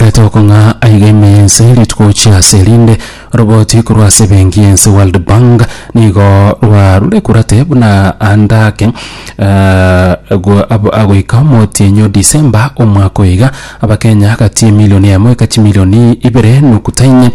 Etokong'aa aiga ime y'ense rituko chia ase erinde, oroboti korwa ase ebenki y'ense World Bank nigo rwarure kurate buna ande ake eh, go- ab- agoika omotienyi o December omwaka oiga abakenya gati emilioni emo eka chimilioni ibere nokutaine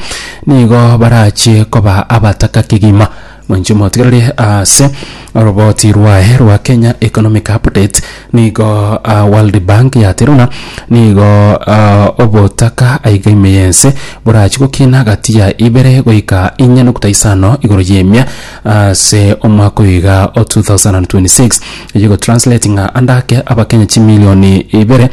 nigo barachie koba abataka kegima Mwanche motigereri ase oroboti rwaye rwa Kenya Economic Update nigo ah, World Bank yatera buna nigo ah, obotaka aiga ime yense borachi gokina gati ya ibere goika inye nokta isano igoro y'emia ase omwaka oyo iga o 2026 eye egotranslate ng'a ande ake abakenya chimilioni ibere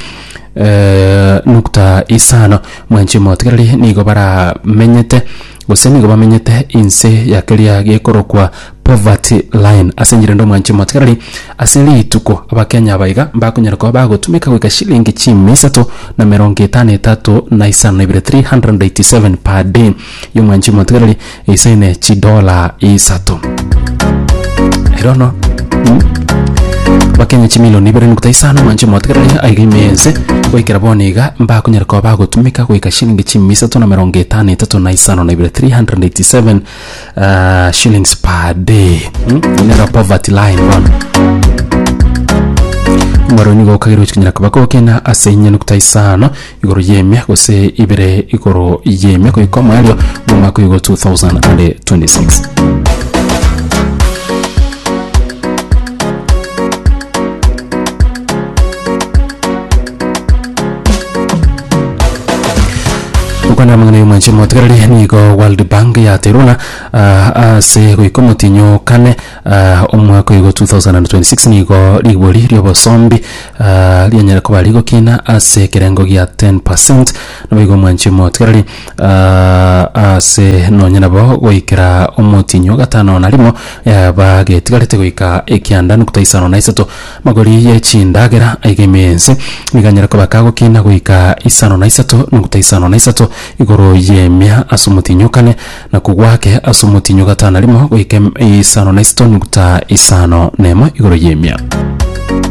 eh, nokta isano mwanche motigereri nigo baramenyete Gose nigo bamenyete inse ya keria gekorokwa poverty line. Ase enchera ende omwanche omotigarari ase rituko abakenya aba iga mbakonyara koba bagotumeka goika shilingi chiimi isato na emerongo etano etato na isano na ibere, 387 per day, ya omwanchi omotigarari eisaine chidola isato. erono bakenya chimilioni ibere nokta isano mwanche motegerere aiga imeense goikera bono iga mbakonyara koba bagotumeka goika shilingi chimi isato na merongo etano etato na isano na ibere 387 ah, shillings per day Hmm? inera poverty line bono mwaroni gokagera gochikanyara koba gokena ase inye nokta isano igoro y'emia gose ibere igoro y'emia goika omoerio bw'omwaka oyogo 2026 okwana amang'ana y'omwanche motigarari nigo world bank yateruna ah, ase goika omotinyo kane Omwaka oyogo 2026 nigo rigori ri'obosombi rianyare koba rigokina ase ekerengo gia 10 percent, naboigo omwanchi omotigareri ase nonye nabo goikera omotienyi o gatano na rimo yaba getigarete goika ekianda nukta isano na isato. Amagori y'echindagera aiga ime ense nigo anyare koba kagokina goika isano na isato nukta isano na isato igoro y'emia ase omotienyi o kane, na kogwa ake ase omotienyi o gatano na rimo goika em- isano na isito nukta isano nemo igoro y'emia.